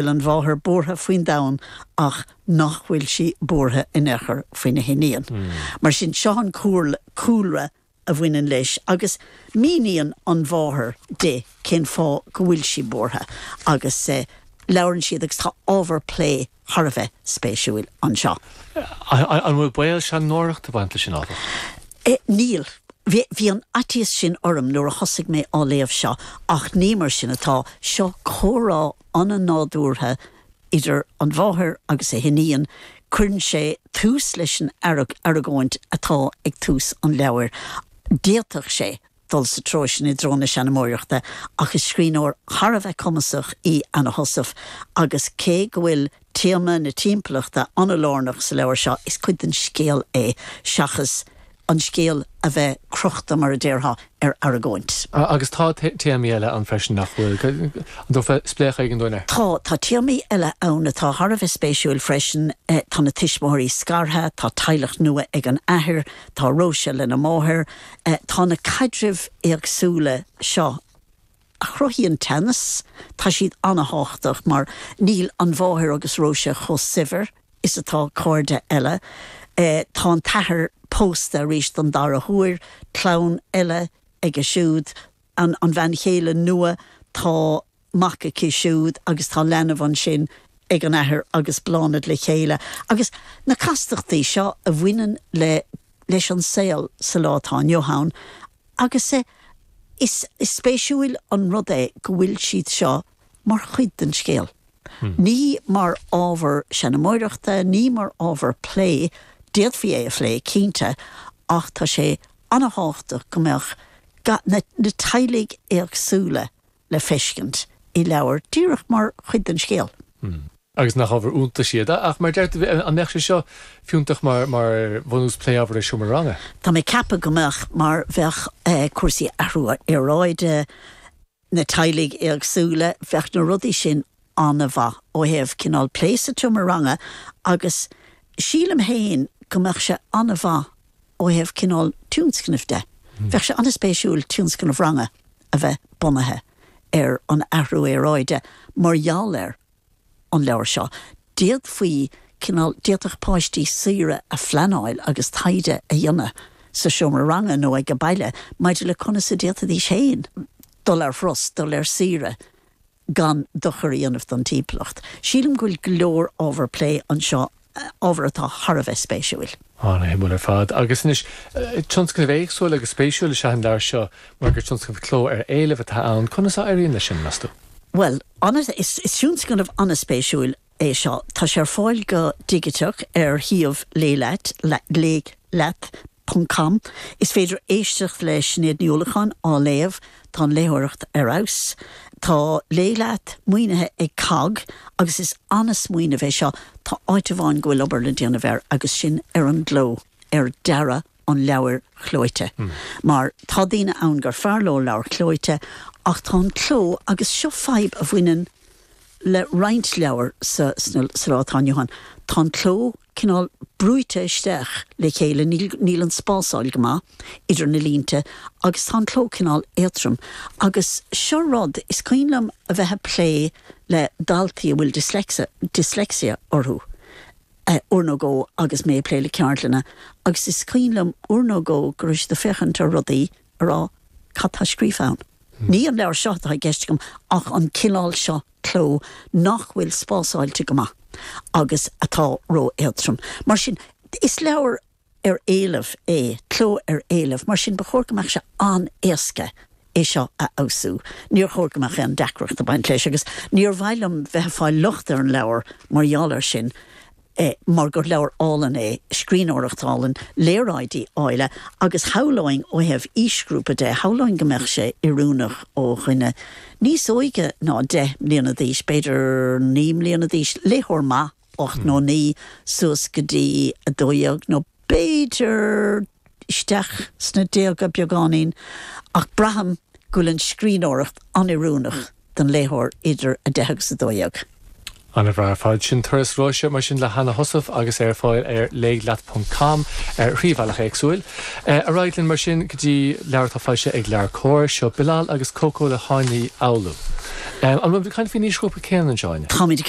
bhfuil an mháthair buartha faoin domhan ach nach bhfuil sí buartha in aon chor faoina hiníon. Mar sin, seo an cúlra a bhaineann leis agus míníonn an mháthair di cén fáth go bhfuil sí buartha agus labhrann siad agus tá ábhar plé thar a bheith spéisiúil anseo. An bhfuil baol seanmóireachta ag baint leis sin, áfach? Níl. Bhí an faitíos sin orm nuair a thosaigh mé á léamh seo ach ní mar sin atá, seo comhrá an-nádúrtha idir an mháthair agus a hiníon, cuireann sé tús leis an argóint atá ag tús an leabhair. D'fhéadfadh sé dul sa treo sin i dtreo na seanmóireachta ach is scríbhneoir thar a bheith cumasach í Anna Heussaff agus cé go bhfuil Téama na timpeallachta an-lárnach sa leabhar seo, is cuid den scéal é seachas an scéal a bheith crochta, mar a déarfá, ar argóint. Agus tá téamaí eile ann freisin, nach bhfuil? An dtabharfá spléachadh éigin dúinn orthu? Tá. Tá téamaí eile ann atá thar a bheith spéisiúil freisin, tá na tuismitheoirí scartha, tá teaghlach nua ag an athair, tá Róise lena máthair, tá na caidrimh éagsúla seo, a chruthaíonn teannas, tá siad an-thábhachtach mar níl an mháthair agus Róise chomh saibhir is atá cairde eile, tá an t-athair pósta arís don dara huair, clann eile aige siúd, an bhean chéile nua, tá mac aici siúd agus tá leanbh ansin ag an athair agus Bláthnaid le chéile, agus na castachtaí seo a bhaineann leis an saol sa lá atá inniu ann, Agus is spéisiúil an rud é go bhfuil siad seo mar chuid den scéal, ní mar ábhar seanmóireachta, ní mar ábhar plé, d'fhéadfaí é a phlé, cinnte, ach tá sé ana-thábhachtach go mbeadh na teaghlaigh éagsúla le feiscint i leabhar díreach mar chuid den scéal. Hmm. Agus nach ábhar iontais iad. Ach, mar a deir tú, an mbeadh sé seo fiúntach mar bhunús plé ábhair i seomra ranga? Tá mé ag ceapadh go mbeadh, mar bheadh cúrsaí athrú aeráide, na teaghlaigh éagsúla, bheadh na rudaí sin an-mhaith ó thaobh cineál plé sa tseomra ranga agus sílim féin go mbeadh sé an-mhaith ó thaobh cineál tionscnaimh de. Bheadh sé an-spéisiúil tionscnamh ranga a bheith bunaithe ar an athrú aeráide mar gheall ar an leabhar seo. D'fhéadfaí cineál, d'fhéadfadh páistí saoire a phleanáil agus taighde a dhéanamh sa seomra ranga nó ag a baile maidir le conas a d'fhéadfaidís féin dul ar thuras, dul ar saoire, gan dochar a dhéanamh don timpeallacht. Sílim go bhfuil go leor ábhar plé anseo, ábhar atá thar a bheith spéisiúil. An-shuimiúil ar fad. Agus anois, tionscnamh éagsúil agus spéisiúil is ea an leabhar seo mar gur tionscnamh cló ar éileamh atá ann. Conas a éiríonn leis sin, meas tú? Bhuel, is tionscnamh an-spéisiúil é seo. Tá sé ar fáil go digiteach ar shuíomh léigh leat léigh leat ponc com. Is féidir éisteacht le Sinéad Ní Uallacháin á léamh, tá an léitheoireacht ar fheabhas. Tá Léigh Leat maoinithe ag COGG agus is an-smaoineamh é seo, tá áit amháin go bhfuil obair le déanamh air agus sin ar an gcló, ar dearadh. an leabhair chlóite. Mar tá daoine ann gur fearr leo leabhair chlóite ach tá an cló, agus seo fadhb a bhaineann le roinnt leabhar sa lá atá inniu ann, tá an cló cineál brúite isteach le chéile, níl an spásáil go maith idir na línte agus tá an cló cineál éatrom. Agus seo rud is cuimhin liom a bheith ag plé le daltaí a bhfuil dyslexia orthu. uair nó dhó agus mé ag plé le ceardlanna agus is cuimhin liom uair nó dhó go raibh siad ag féachaint ar rudaí ag rá cad tá scríofa ann? Ní an leabhar seo atá i gceist agam ach an cineál seo cló nach bhfuil spásáilte go maith agus atá ró-éatrom. Mar sin, is leabhar ar éileamh é, cló ar éileamh, mar sin ba chóir go mbeadh sé an-éasca é seo a fheabhsú. Níor chóir go mbeadh aon deacracht ag baint leis agus níor mhaith liom bheith ag fáil locht ar an leabhar mar gheall air sin mar gur leabhar álainn é, scríbhneoireacht álainn, léaráidí áille agus shamhlóinn ó thaobh aoisghrúpa de, shamhlóinn go mbeadh sé oiriúnach ó dhuine níos óige ná deich mbliana d'aois, b'fhéidir naoi mbliana d'aois, léitheoir maith. ocht nó naoi suas go dtí a dó dhéag nó b'fhéidir isteach sna déaga beagáinín ach braithim go bhfuil an scríbhneoireacht an-oiriúnach don léitheoir idir a deich agus a dó dhéag. An-bhreá. Fáilte. Sin Turas Róise mar sin le hAnna Heussaff agus é ar fáil ar léigh leat ponc com ar thrí bhealach éagsúla. Ar aghaidh linn mar sin go dtí leabhar atá foilsithe ag LeabhairComhar. Seo Bilal agus Coco le hÁine Uí Fhoghlú. An bhfuil muid ag caint faoin aoisghrúpa céanna anseo, Áine? Táimid ag